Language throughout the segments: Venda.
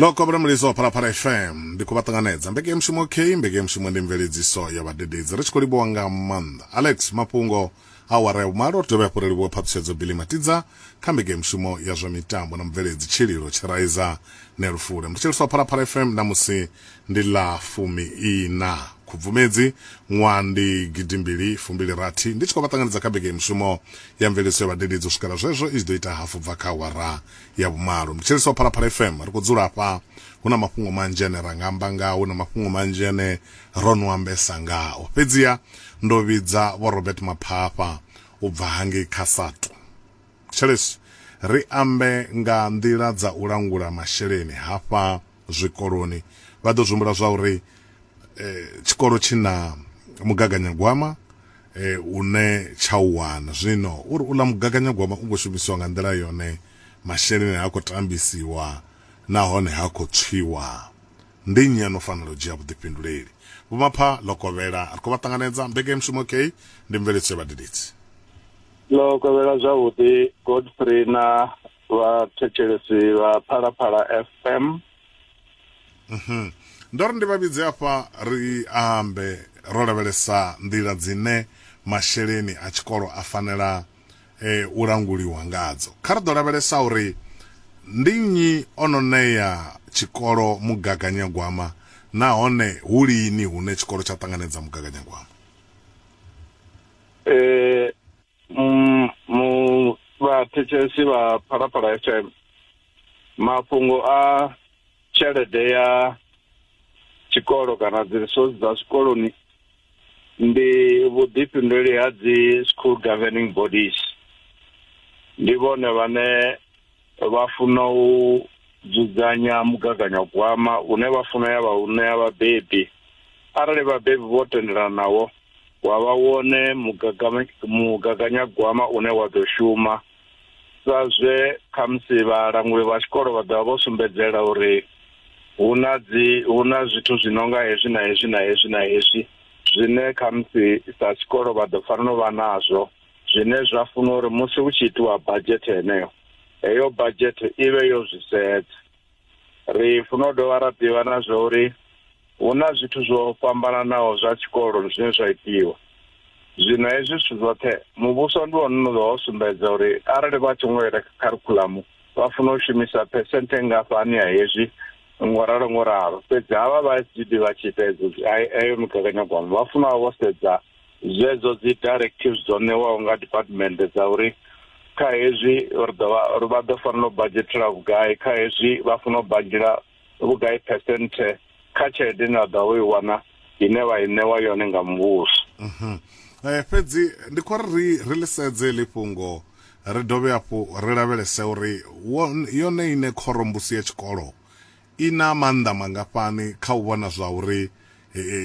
loko vha muliso wa phalaphala fm ndi khou vha ṱanganedza mbekeyamushumo k mbekeyamushumo ndi mveledziso ya vhadededzi ri tshi khou livhuwa nga maanḓa alex mafhungo awara ya vhumalo ri dovhe hafhu ri livhuwe phaṱhutshedzo bili matidza kha mbekeyamushumo ya zwa mitambo na mubveledzi tshililo tshiraiza nelufule mthetshelisi wa phalaphala fm namusi Ndi ḽa fumi-iṋa Khubvumedzi ṅwaha ndi gidimbili fumbili-rathi ndi tshi khou vha ṱanganedza kha Vhege ya Mishumo ya Mveledziso ya Vhadededzi. U swikela zwezwo i tshi ḓo ita hafu bva kha awara ya vhumalo. Ndi thetshelesa Phalaphala FM. Ri khou dzula hafha, hu na mafhungo manzhi ane ra nga amba ngao, hu na mafhungo manzhi ane ro no ambesa ngao. Fhedziha ndo vhidza Vho Robert Maphafha u bva hangei kha SATU. Thetshelesi, ri ambe nga nḓila dza u langula masheleni hafha zwikoloni vha ḓo zwihumbula zwa uri eh, tshikolo tshi na mugaganyagwama eh, une tsha u wana zwino uri uḽa mugaganyagwama u khou shumisiwa nga nḓila yone masheleni ha khou tambisiwa nahone ha khou tswiwa ndi nnyi ano fanela u dzhia vhuḓifhinduleli vhomapha ḽo kovhela ri khou vha ṱanganedza mbekanyamushumo kei ndi mveledziso ya vhadededzi ḽo kovhela zwavhuḓi godfrey na vhathetshelesi vha phalaphala fm mhm. ndo ri ndi vha vhidze afha ri ambe ro lavhelesa nḓila dzine masheleni a tshikolo a fanela e, u languliwa ngadzo kha ri ḓo lavhelesa uri ndi nnyi o no ṋea tshikolo mugaganyagwama nahone hu lini hune tshikolo tsha ṱanganedza mugaganyagwama um Mm, mu vhathetshelesi vha phalaphala fm mafhungo a tshelede ya tshikolo kana dzi resource dza zwikoloni ndi vhuḓifhinduleli ha dzi school governing bodies ndi vhone vhane vha funa u dzudzanya mugaganyagwama une vha funa ya vha u ṋea vhabebi arali vhabebi vho tendelana nawo wa vha wone mugaganyagwama une wa ḓo shuma sa zwe khamusi vhalanguli vha tshikolo vha ḓovha vho sumbedzela uri hu na dzi hu na zwithu zwi no nga hezwi na hezwi na hezwi na hezwi zwine khamusi sa tshikolo vha ḓo fanela u vha nazwo zwine zwa funa uri musi hu tshi itiwa badzhethe heneyo heyo badzhethe i vhe yo zwi sedza ri funa u dovha ra ḓivha na zwa uri hu na zwithu zwo fhambananaho zwa tshikolo zwine zwa itiwa zwino hezwi zwithu zwoṱhe muvhuso ndi wone une ḓo sumbedza uri arali vha tshi ngo ita kharikhuḽamu vha funa u shumisa phesenthe ngafhani ya hezwi ngo ralo ngo ralo fhedzi havha vha SGB vha tshi ita heyo migaganyagwama vha funa vha vho sedza Zwedzo dzi directives dzo ṋewaho nga department dza uri kha hezwi ri ḓo vha ri vha ḓo fanela u badzhetela vhugai kha hezwi vha fanela u badzhela vhugai percent kha tshelede ine vha ḓa vho i wana ine vha i ṋewa yone nga muvhuso mhm. eh, fhedzi ndi khou ri ri lisedze ḽi fhungo ri dovhe hafhu ri lavhelese uri yone ine khorombusi ya tshikolo I na maanḓa mangafhani kha u vhona zwa uri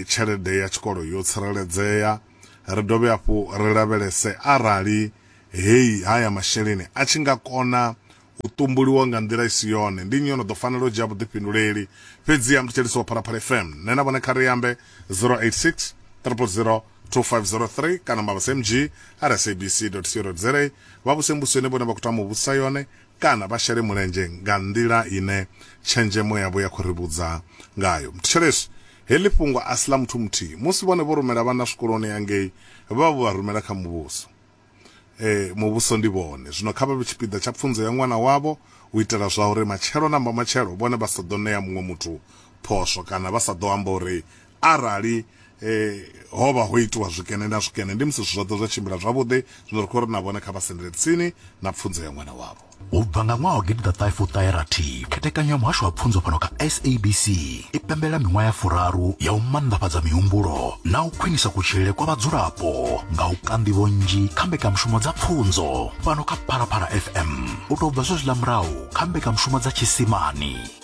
tshelede ya tshikolo yo tsireledzea? Ri dovhe hafhu ri lavhelese arali heyi haya masheleni a tshi nga kona u ṱumbuliwa nga nḓila i si yone, ndi nnyi o no ḓo fanela u dzhia vhuḓifhinduleli? Fhedziha Mthetshelesi wa Phalaphala FM, nṋe na vhone kha ri ambe 0860002503 kana mavhusemg@sabc.co.za. Vha vhuse mbusweni vhone vha khou tama u vhusa yone. kana vha shele mulenzhe nga nḓila ine tshenzhemo yavho ya khou ri vhudza ngayo. Thetshelesi, Heḽi fhungo a si ḽa muthu muthihi. Musi vhone vho rumela vhana zwikoloni hangei, vha vho vha rumela kha muvhuso. Ee, muvhuso ndi vhone. Zwino kha vha vhe tshipiḓa tsha pfunzo ya ṅwana wavho u itela zwauri matshelo na mbamatshelo vhone vha sa ḓo ṋea muṅwe muthu phosho kana vha sa ḓo amba uri arali eh ho vha ho itiwa zwikene na zwikene ndi musi zwoṱhe zwa tshimbila zwavhuḓi zwino ri khou ri na vhone kha vha sendele tsini na pfunzo ya ṅwana wavho u bva nga ṅwaha wa gidiḓaṱahefuṱaherathi khethekanyo ya muhasho wa pfunzo fhano kha sabc i pembela miṅwaha ya furaru ya u mannḓafhadza mihumbulo na u khwinisa kutshilele kwa vhadzulapo nga u kanḓivho nnzhi kha mbekanyamushumo dza pfunzo fhano kha phalaphala fm u tou bva zwezwiḽa murahu kha mbekanyamushumo dza tshisimani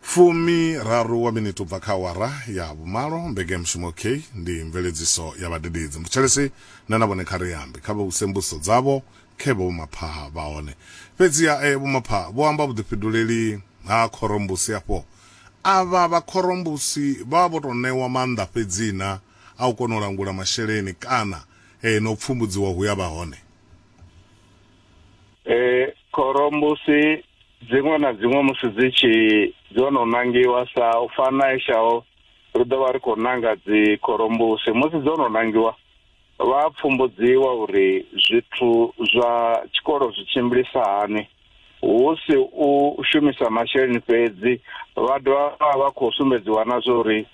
Fumi raru wa miniti ubva kha awara ya vhumalo. Mbekeamushumo OK ndi mveledziso ya vhadededzi. Mbutshelesi nṋe na vhone kha ri ambe, kha vha vhuse mbudziso dzavho khe vho vhomaphaha vha hone. Fhedziha e vhomaphaha vho amba vhuḓifhiduleli ha khorombusi afho. Avha vha khorombusi vha vha vho tou ṋewa maanḓa fhedzina a u kona u langula masheleni kana e na u pfumbudziwa hu ya vha hone. E Khorombusi dziṅwe na dziṅwe musi dzi tshi dzo no nangiwa sa u fana na eshaho ri ḓo vha ri khou nanga dzi khorombusi musi dzo no nangiwa vha pfumbudziwa uri zwithu zwa tshikolo zwi tshimbilisa hani hu si u shumisa masheleni fhedzi vha dovha vha khou sumbedziwa na zwa uri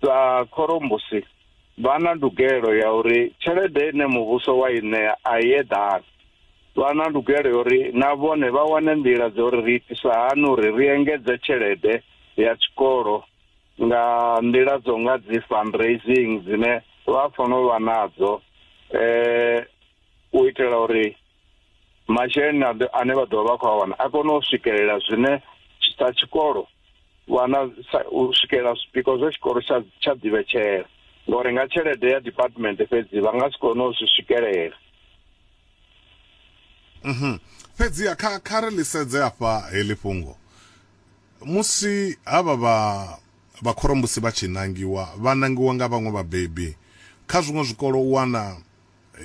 sa khorombusi vha na ndugelo ya uri tshelede ine muvhuso wa i ṋea a i eḓani vha na ndugelo ya uri na vhone vha wane nḓila dza uri ri itisa hani uri ri engedze tshelede ya tshikolo nga nḓila dzo nga dzi fundraising dzine vha fanela u vha nadzo um u itela uri masheleni ane vha ḓovha vha khou a wana a kone u swikelela zwine sa tshikolo vhana u swikelela zwipiko zwa tshikolo tsha tsha ḓivhetshela ngori nga tshelede ya department fhedzi vha nga si kone u zwi swikelela mhm fhedzi kha kha ri lisedze afha heḽi fhungo musi havha vha vha khorombusi vha tshi nangiwa vha nangiwa nga vhaṅwe vhabebi kha zwiṅwe zwikolo u wana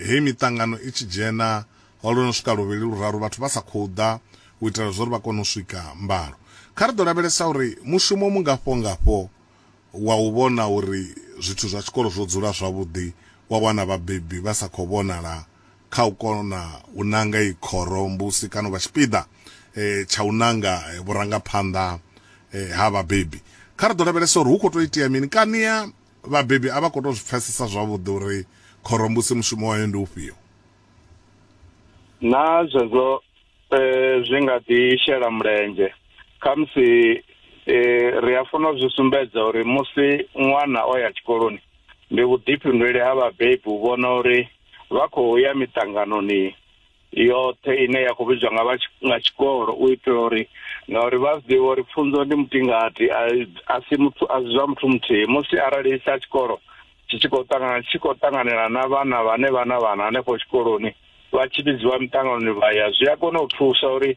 Heyi miṱangano i tshi dzhena ho lwo no swika luvhili luraru vhathu vha sa khou ḓa u itela zwa uri vha kone u swika mbalo. Kha ri ḓo lavhelesa uri mushumo mungafho-ngafho wa u vhona uri zwithu zwa tshikolo zwo dzula zwavhuḓi wa wana vhabebi vha sa khou vhonala kha u kona u nanga iyi khoro mbusi kana u vha tshipiḓa tsha u nanga vhurangaphanḓa ha vhabebi. Kha ri ḓo lavhelesa uri hu khou tou itea mini kani Vhabebi a vha khou tou zwi pfesesa zwavhuḓi uri khorombusi mushumo wayo ndi ufhio. Naa zwezwo zwi nga ḓi shela mulenzhe? Khamusi ri a funa u zwi sumbedza uri musi ṅwana o ya tshikoloni, ndi vhuḓifhinduleli ha vhabebi u vhona uri vha khou ya miṱanganoni yoṱhe ine ya khou vhidzwa nga vha nga tshikolo u itela uri ngauri vha zwi ḓivha uri pfunzo ndi mutingati a si muthu a si zwa muthu muthihi musi arali sa tshikolo tshi tshi khou ṱangana tshi khou ṱanganela na vhana vhane vha na vhana hanefho tshikoloni vha tshi vhidziwa miṱanganoni vha ya zwi a kona u thusa uri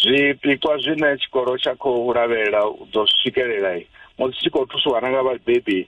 zwipikwa zwine tshikolo tsha khou lavhelela u ḓo swikelela musi tshi khou thusiwa na nga vhabebi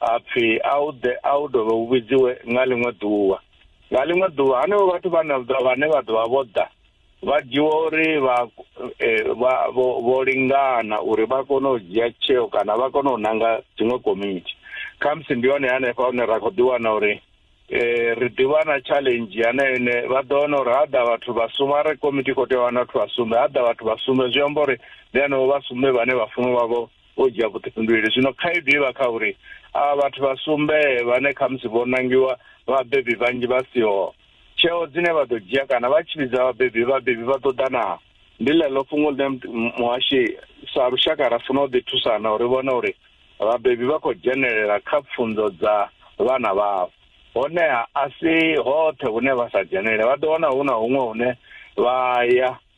a pfi a u ḓe a u dovhe u vhidziwe nga ḽiṅwe ḓuvha nga ḽiṅwe ḓuvha hanevho vhathu vhane vhane vha ḓovha vho ḓa vha dzhiwa uri vha e, vha vho lingana uri vha kone u dzhia tsheo kana vha kone u nanga dziṅwe komiti khamusi ndi hone hanefha hune ra khou ḓiwana uri eh ri ḓivha na challenge yana ine vha ḓo wana uri ha ḓa vhathu vha sumbe are komiti khou tea u wana vhathu vha sumbe ha ḓa vhathu vha sumbe zwi amba uri ndi hanevho vha sumbe vhane vha funa vha vho o dzhia vhuḓifhinduleli. Zwino khaedu i vha kha uri avha vhathu vha sumbe vhane khamusi vho nangiwa vhabebi vhanzhi vha siho, tsheo dzine vha ḓo dzhia kana vha tshi vhidza vhabebi, vhabebi vha ḓo ḓa naa? Ndi ḽeḽo fhungo ḽine muhashi sa lushaka ra funa u ḓi thusana uri vhone uri vhabebi vha khou dzhenelela kha pfunzo dza vhana vhavho. Honeha a si hoṱhe hune vha sa dzhenelele, vha ḓo wana hu na huṅwe hune vha ya.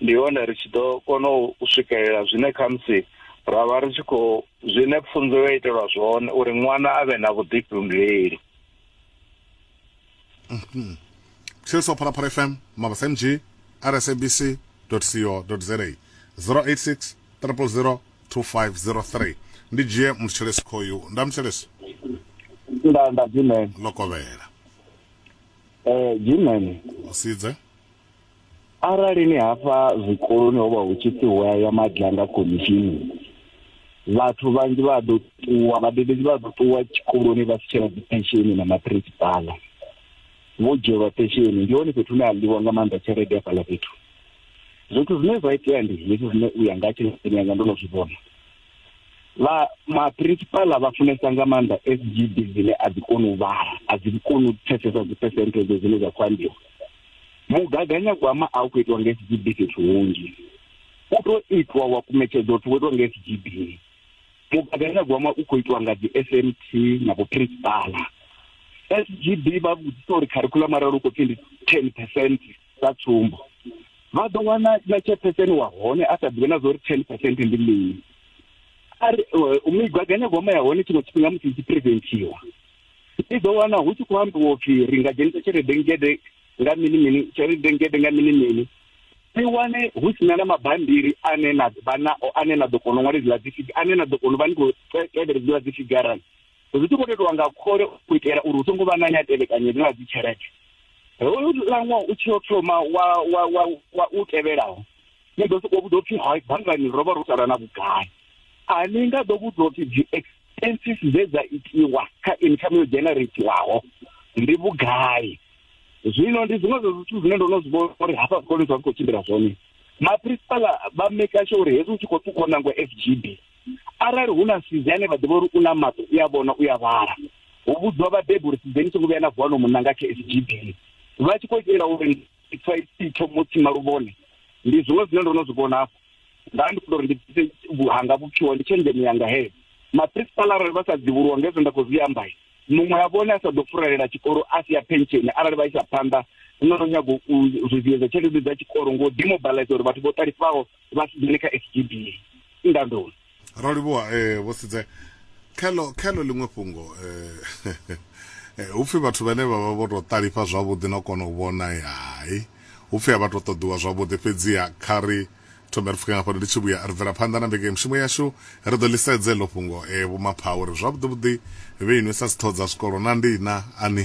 Ndi hone ri tshi ḓo kona u swikelela zwine khamusi ra vha ri tshi khou zwine pfunzo yo itelwa zwone uri ṅwana a vhe na vhuḓifhinduleli. Mhm. Tshill so Phalaphala FM, Mabasa MG, RSABC za 086 000 2503 ndi dzhie muthetshelesi khoyu nda muthetshelesi nda nda dzimeni lokovhela eh dzimeni usidze Arali ni hafha zwikoloni ho vha hu tshi pfi hu a ya madlanga khomishini vhathu vhanzhi vha ḓo ṱuwa vhadededzi vha ḓo ṱuwa tshikoloni vha si tshena dzi pensheni na maphirisipaḽa vho dzhielwa pensheni ndi hone fhethu hune a ḽiwa nga maanḓa tshelede ya fhaḽa fhethu zwithu zwine zwa itea ndi hezwi zwine u ya nga tshelede yanga ndo no zwi vhona vha maphirisipaḽa vha funesa nga maanḓa s g b dzine a dzi koni u vhala a dzi koni u pfesesa dzi percentage dzine dza khou ambiwa mugaganyagwama a u khou itiwa nga sgb fhethu hunzhi u tou itwa wa kumetshedza u thi wo itiwa nga sgb mugaganyagwama u khou itiwa nga dzi s m t na vhuprinsipala sgb vha vhudzisa uri kharikhulamu arali u khou pfhi ndi ten percent sa tsumbo vha ḓo wana na tshepheseni wa hone a sa ḓivhe na zwa uri ten percent ndi mini ari eh, migaganyagwama ya hone tshiṅwe tshifhinga musi i tshi presentiwa ni ḓo wana hu tshi khou ambiwa upfhi ri nga dzhenisa tshelede ngede nga mini mini tshelede ngede nga mini mini ni wane hu sina na mabambiri ane na vha nao ane na ḓo kona u ṅwala idziḽa dzifiga ane na ḓo kona u vha ni khou tevhela idziḽa dzifigarani zwi tshi khou tetiwa nga khole u itela uri hu songo vha na ne a tevhekanya idziḽa dzitshelede hoyu laṅwa u tshi o thoma wa wa wa wa u tevhelaho ni ḓo sokou vhudzwa upfhi hai banngani ro vha ro sala na vhugai a ni nga ḓo vhudzwa upfhi dzi census dze dza itiwa kha income yo generatiwaho ndi vhugai zwino ndi zwiṅwe zwa zwithu zwine ndo no zwi vhona uri hafha zwikoloni zwa zwi khou tshimbila zwone maprinsipala vha meka sho uri hezwi u tshi khou ṱukwa nango f g b arali hu na sizi ane vha ḓivha uri u na maṱo u a vhona u a vhala hu vhudziwa vhabebi uri sizeni songo vhuya na vuwa no munna nga kha f g b vha tshi khou itela uri ipfa ithomo tsima luvhone ndi zwiṅwe zwine ndo no zwi vhona hafho nda ndi khou uri ndi bvise vhuhanga vhupfiwa ndi tshenzhemo yanga heyo maprinsipala arali vha sa dzivhuluwa ngezwo nda khou zwi amba muṅwe a vhone a sa ḓo furelela tshikolo a si ya pensheni arali vha isa phanḓa no no nyago u zwiziedza tshelede dza tshikolo ngo demobilize uri vhathu vho ṱalifhaho vha si dzhene kha s g b ndandoni ro livhuwa eh, vho sidze khelo khelo ḽiṅwe fhungo eh, eh, upfi vhathu vhane vha vha vho tou ṱalifha zwavhuḓi no kona u vhona hai upfi a vha tou ṱoḓiwa zwavhuḓi fhedziha kha ri thome ri pfuke nga fhano ndi tshi vhuya ri bvela phanḓa na mbeke mishumo yashu ri ḓo ḽisedze ḽo fhungo e eh, vhumapha uri zwavhuḓivhuḓi vhe inwi sa sithodza zwikolo na ndina ani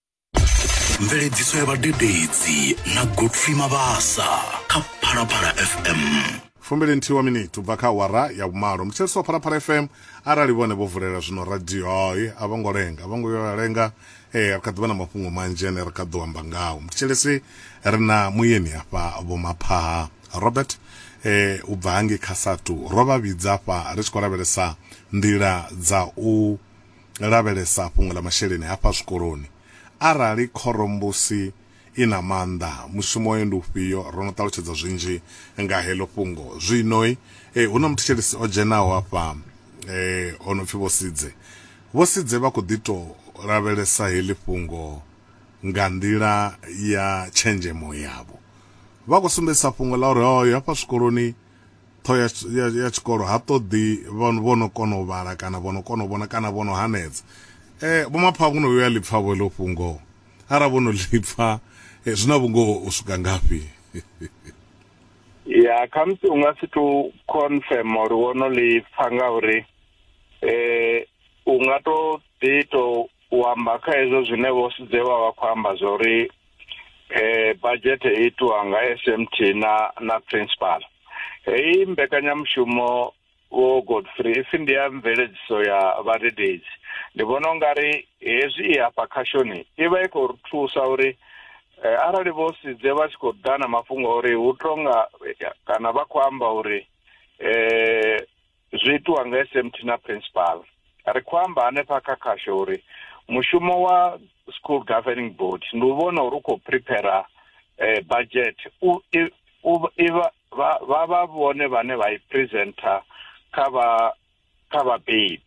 mveledziso ya vhadededzi na godfrey mabasa kha phalaphala fm fumbili nthihi wa miniti u bva kha awara ya vhumalo muthetshelesi wa phalaphala fm arali vhone vho vulela zwino radio hayi a vho ngo lenga a vho ngo yo ya lenga ee ri kha ḓivha na mafhungo manzhi ane ri kha ḓo amba ngao muthetshelesi ri na muyeni hafha vho maphaha robert eh, u bva hangi kha satu ro vha vhidza hafha ri tshi khou lavhelesa nḓila dza u Lavhelesa fhungo ḽa masheleni hafha zwikoloni. Arali khorombusi i na maanḓa, mushumo wayo ndi ufhio? Ro no ṱalutshedza zwinzhi nga heḽo fhungo. Zwino hu na muthetshelesi o dzhenaho hafha o no pfi Vho Sidze. Vho Sidze vha khou ḓi tou lavhelesa heḽi fhungo nga nḓila ya tshenzhemo yavho. Vha khou sumbedzisa fhungo ḽa uri, hafha zwikoloni, Ṱhoho ya, ya, ya tshikolo ha ṱoḓi vho no kona u vhala kana vho no kona u vhona kana vho no hanedza eh vho mapha kuno vhuya lipfa vho ḽo fhungo ara vho no lipfa eh, zwi na vhungoho u swika ngafhi ya khamusi u nga si tou confirm uri wo no lipfa ngauri eh u nga to ḓi to u amba kha hezwo zwine vho sudzewa vha khou amba zwa uri eh budget itwa nga SMT na na principal heyi mbekanyamushumo vho Godfrey ipfi ndi ya mveledziso ya vhadededzi ndi vhona ungari hezwi i hafha khashoni i vha i khou ri thusa uri eh, arali vho sidze vha tshi khou ḓa na mafhungo uri hu tonga kana vha khou amba uri eh zwi itiwa nga SMT na principal ri khou amba hanefha kha khasho uri mushumo wa school governing board ndi u vhona uri u khou prepare eh, budget u i- u iva vha vha vha vhone vhane vha i presenter kha vha kha vhabebi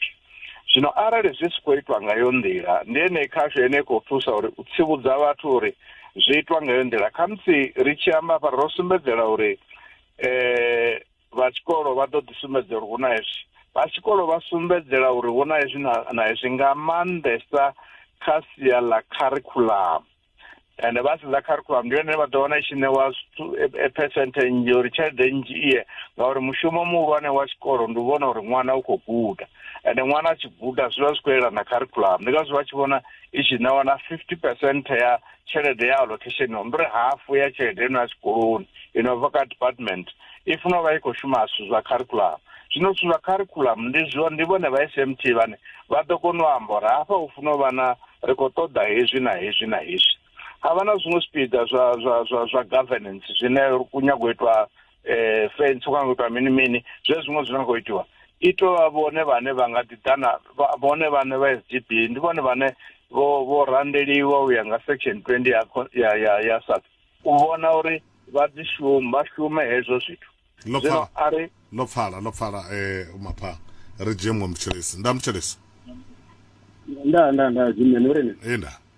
zwino arali zwi si khou itwa nga yo nḓila ndi ene khasho ene i khou thusa uri u tsivhudza vhathu uri zwi itwa nga yo nḓila khamusi ri tshi amba hafha ro sumbedzela uri eh vha tshikolo vha ḓo ḓi sumbedza uri hu na hezwi vha tshikolo vha sumbedzela uri hu na hezwi na hezwi nga maanḓesa kha sia ḽa kharikhulamu ende vha sedza kharikhulamu ndi yone vha ḓo wana i tshi ṋewa e, e percent nnzhi uri tshelede nnzhi iye ngauri mushumo muhulwane wa tshikolo ndi u vhona uri ṅwana u khou guda ende ṅwana a tshi guda zwi vha zwi khou elana kharikhulamu ndi ngazwo vha tshi vhona i tshi ṋewa na fifty percent ya tshelede ya allocation no ndiri hafu ya tshelede ino ya tshikoloni ino bva kha department i funa u vha i khou shuma zwithu zwa curriculum zwino zwithu zwa curriculum ndi zwo ndi vhone vha smt vhane vha ḓo kona u amba uri hafha hu funa u vha na ri khou ṱoḓa hezwi na hezwi na hezwi ha vha na zwiṅwe zwipiḓa zwa zwa zwa zwa governance zwine ku nyago u itwa eh fence kana kuita mini mini zwe zwiṅwe zwine khou itiwa i to vha vhone vhane vha nga ḓi ḓana vhone vhane vha SGB ndi vhone vhane vho vho randeliwa u ya nga section 20 ya ya ya, ya SARS u vhona uri vha dzi shume vha shume hezwo zwithu lo pfala ari lo pfala lo pfala eh mapha ri dzhie mwe mtshelesi nda mtshelesi nda nda nda dzimene uri ni eh nda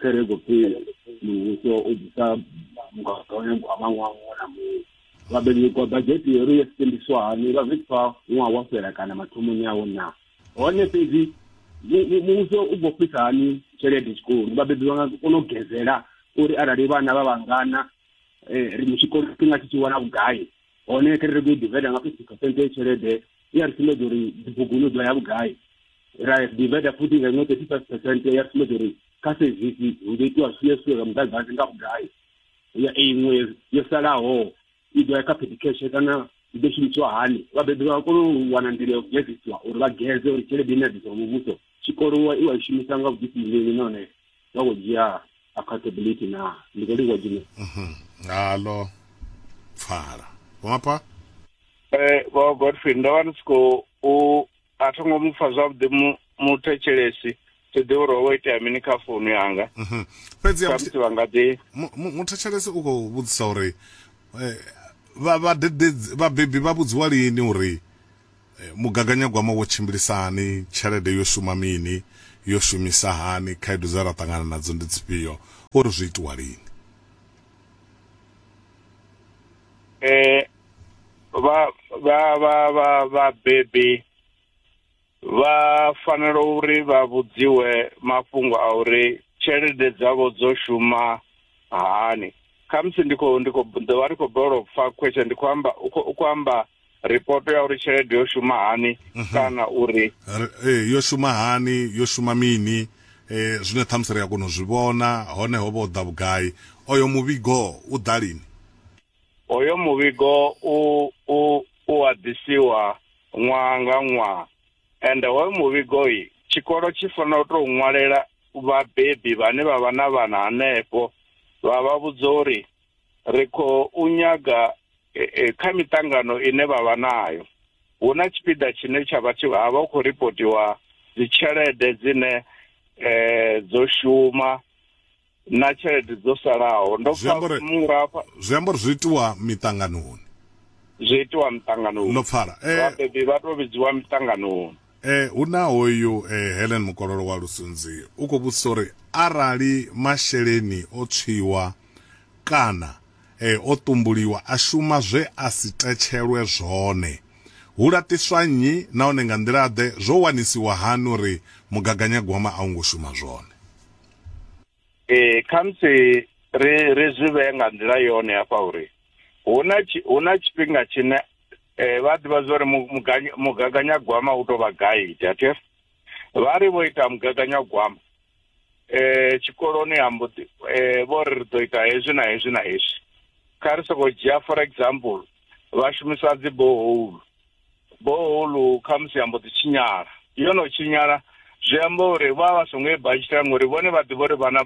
khe re khou pfi muvhuso u ḓisa mugaganyagwama ṅwaha muṅwe na muṅwe vhabenyekwa badzhete yo ri yo sendiswa hani vha zwi pfa ṅwaha wa fhela kana mathomoni awo na hone fhedzi muvhuso u khou fhisa hani tshelede tshikoloni vhabebi vha nga kona u gezela uri arali vhana vha vhangana um ri tshikoloni tshi nga tshi tshi wana vhugai hone kharali ri khou i divida nga fifty percent ya tshelede i a ri sumbedza uri dzibuguni u ḓo ya vhugai ra divida futhi nga iṅwe thirty five percent ya ri sumbedza uri kha sevisi hu ḓo itiwa zwine zwithu zwa muḓagasi nga vhugai ya iṅwe yo salaho i ḓo ya kha pedication kana i ḓo shumisiwa hani vhabebi vha kone u wana nḓila ya u gedzisiwa uri vha geze uri tshelede ine ya ḓiswa muvhuso tshikolowa i wa i shumisa nga vhuḓifhinduleli nahone nga go dzhia accountability na ndi khou livhuwa dzine mhm. ngalo pfala vhomapha eh vho godfrey ndo vha ndi tshi khou a tho ngo mu pfa zwavhuḓi muthetshelesi thi ḓi uri ho itea mini kha founu yanga mhm. fhedzisamusi vha nga ḓi muthetshelesi u khou vhudzisa uri eh, vhabebi vha vhudziwa lini uri Mugaganyagwama wo tshimbilisa hani? Tshelede yo shuma mini? Yo shumisa hani? Khaedu dze ra ṱangana nadzo ndi dzifhio? O ri zwo itiwa lini? E, vha vha vha vha vhabebi vha fanela uri vha vhudziwe mafhungo a uri tshelede dzavho dzo shuma hani. Khamusi ndi khou ndi khou ḓo vha ndi khou balelwa u pfa question ndi khou amba u khou amba ripoto ya uri tshelede yo shuma hani mhm. kana uri eh, yo shuma hani yo shuma mini eh zwine ṱhamusi ri a kona u zwi vhona hone ho vha u ḓa vhugai oyo muvhigo u ḓa lini oyo muvhigo u u u a ḓisiwa ṅwaha nga ṅwaha ende hoyo muvhigo i tshikolo tshi fanela u tou ṅwalela vhabebi vhane vha vha na vhana hanefho vha vha vhudza uri ri khou nyaga e, e, kha miṱangano ine vha vha nayo hu na tshipiḓa tshine tsha vha ha vha hu khou ripotiwa dzitshelede dzine um dzo shuma na tshelede dzo salaho ndo pfa murafha zwi amba uri zwi itiwa miṱanganoni zwi itiwa miṱanganoni ndo pfala eh, vhabebi vha tou vhidziwa miṱanganoni E, hu na hoyu e, Helen Mukololo wa Lusunzi u khou vhudzisa uri arali masheleni o tswiwa kana e, o ṱumbuliwa a shuma zwe a si tetshelwe zwone, hu laṱiswa nnyi nahone nga nḓila-ḓe? Zwo wanisiwa hani uri mugaganyagwama a u ngo shuma zwone? ee khamusi ri ri zwi vhee nga nḓila yone hafha uri hu na hu na tshifhinga tshine um vha ḓivha zwa uri mugaganyagwama u tou vha gaidi athe vha ri vho ita mugaganyagwama um tshikoloni ha mboḓi um vho ri ri ḓo ita hezwi na hezwi na hezwi kha ri sokou dzhia for example vha shumisa dzi boholu Boholu khamusi ya mbo ḓi tshinyala. Yo no tshinyala zwi amba uri vha vha songo i badzhetela ngori vhone vha ḓivha uri vhana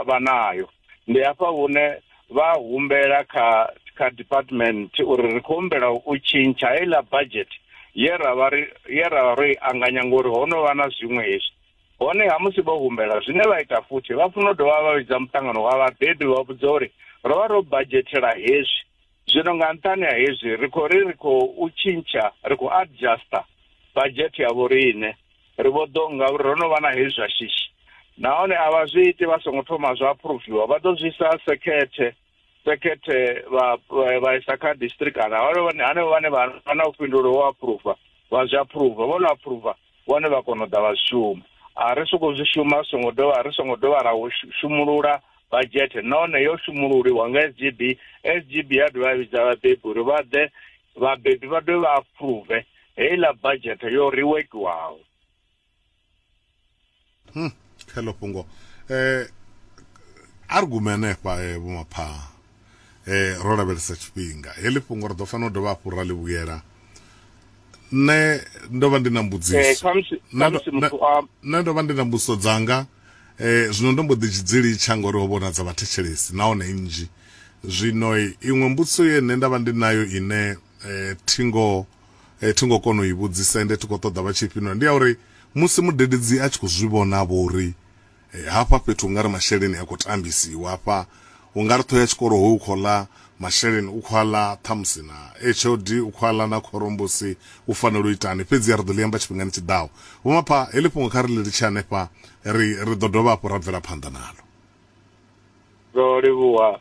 vha nayo. Ndi hafha hune vha humbela kha kha department uri ri khou humbela u tshintsha heiḽa budget ye ra vha ri ye ra vha ro i anganya ngori ho no vha na zwiṅwe hezwi hone ha musi vho humbela zwine vha ita futhi vha funa u dovha vha vhidza muṱangano wa vhabebi vha vhudza uri ro vha ro badzhetela hezwi Zwino nga nṱhani ha hezwi, ri khou ri ri khou tshintsha, ri khou adjuster badzhethe ya vhoriṋe. Ri vho ḓo, ngauri ro no vha na hezwi zwa shishi. Nahone a vha zwi iti vha songo thoma zwa aphuruviwa. Vha ḓo zwi isa sekhethe, sekhethe vha, vha, vha isa kha district kana hanevho vhane vha vha na vhufhinduleli ho aphuruva, vha zwi aphuruva. Vho no aphuruva, vhone vha kona u ḓa vha zwi shuma a ri soko zwi shuma ri songo dovha ri songo dovha ra shumulula badzhethe nahone yo shumululiwa nga sgb sgb ya dovha ya vhidza vhabebi uri vha ḓe vhabebi vha dovhe vha aphuruve heiḽa badzhethe yo riwekiwaho Hmm, hello pungo eh argument efha eh vho mapha eh ro lavhelesa tshifhinga heḽi fhungo ri ḓo fanela u dovha hafhu ra ḽi vhuyela nṋe ndo vha ndi na mbudziso eh khamusi Nṋe ndo- khamusi muthu a nṋe ndo vha ndi na mbudziso dzanga eh zwino ndo mbo ḓi dzi- dzi litsha ngori ho vhona dza vhathetshelesi nahone nnzhi zwino eh, iṅwe mbudziso ye nṋe nda vha ndi nayo ine eh thingo eh, thi ngo kona u i vhudzisa ende thi khou ṱoḓa vha tshi fhindula ndi ya uri musi mudededzi a tshi khou zwi vhona vho uri eh, hafha fhethu u nga ri masheleni a khou tambisiwa hafha u nga ri ṱhoho ya tshikolo hoyu u khou ḽa masheleni u khou a ḽa ṱhamusi na hod u khou a ḽa na khorombusi u fanela u itani fhedzi a ri ḓo ḽi amba tshifhingani tshi ḓaho vho mapha heḽi fhungo kha ri ḽi litshe hanefha ri ri ḓo dovha hafhu ra bvela phanḓa nalo ro livhuwa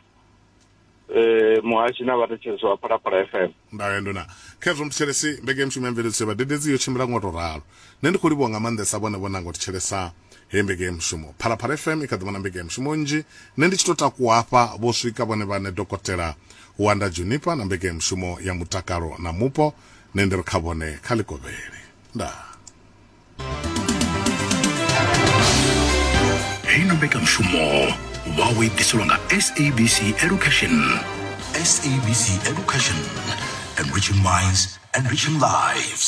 eh, muhashi na vhathetshelesi wa phalaphala fm ndayo nduna khezwo muthetshelesi mbekemushumo ya mveledziso vhadededzi yo tshimbila ngo to ralo nṋe ndi khou livhuwa nga maanḓesa vhone vho nanga u thetshelesa heyi mbekemushumo phalaphala fm i kha ḓivha na mbekemushumo nnzhi nṋe ndi tshi to takuwa hafha vho swika vhone vhane dokotela wanda junipa na mbekemushumo ya mutakalo na mupo nṋe ndi ri kha vhone kha ḽikovhele ndaa heyi no mbekanyamushumo vha o i ḓiselwa nga sabc education sabc education enriching minds enriching lives